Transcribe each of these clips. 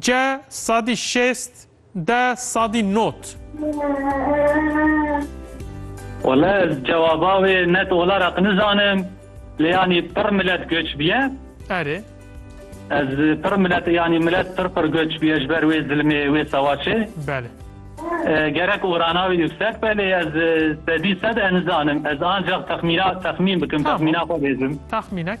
Ce sadî şêst de sadî not. Wele ez cewaba wê net ola req nizanim lê yanî pir milet göç biye. Erê. Ez pir milet yanî milet pir pir göç biye ji ber wê zilmê wê sewaçê. Belê. Gerek orana wê yüksek be lê ez sedî sed e nizanim. Ez ancax texmîna texmîn bikim texmîna xwe bêjim. Texmînek.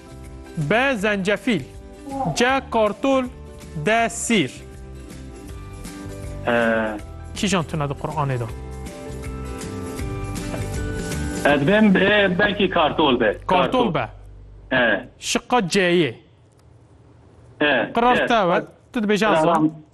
B zencefîl C kartol D sîr E Kîjan tune di Quranê de? Ez bim e, belkî kartol be. Kartol be. E. Şiqa C'yê. E. Qirar te we. Tu dibêje ez zanim.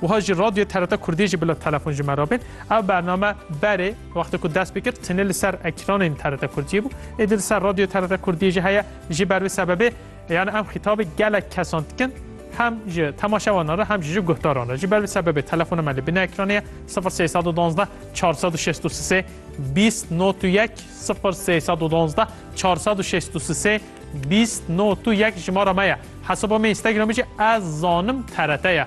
Wiha jî Radyoyê TRT Kurdî jî bila telefon ji me re bên. Ev bername berê wextê ku dest pê kir tenê li ser ekranên TRT Kurdiyê bû. Êdî li ser Radyoyê TRT Kurdiyê jî heye. Ji ber vê sebebê yani em xîtabê gelek kesan dikin. Hem ji temaşevanan re hem jî ji guhdaran re. Ji ber vê sebebê telefona me li binê ekranê ye sifir sey sed û duwazdeh çar sed û şêst û sisê bîst not û yek sifir sey sed û duwazdeh çar sed û şêst û sisê bîst not û yek jimara me ye. Hesaba me Instagramê jî ez zanim TRT ye.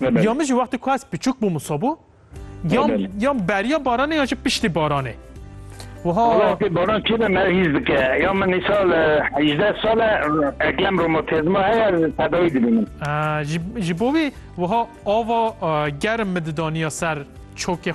Ya min jî wextê ku ez piçûk bûm wisa bû. Yan yan beriya baranê ya jî piştî baranê. Wala pê baran çi me hîz dike. Ya min îsal hîzdeh sal e eklem romatizma heye tedawî dibî min. Ji bo wî wiha ava germ min didaniya ser çokê xwe.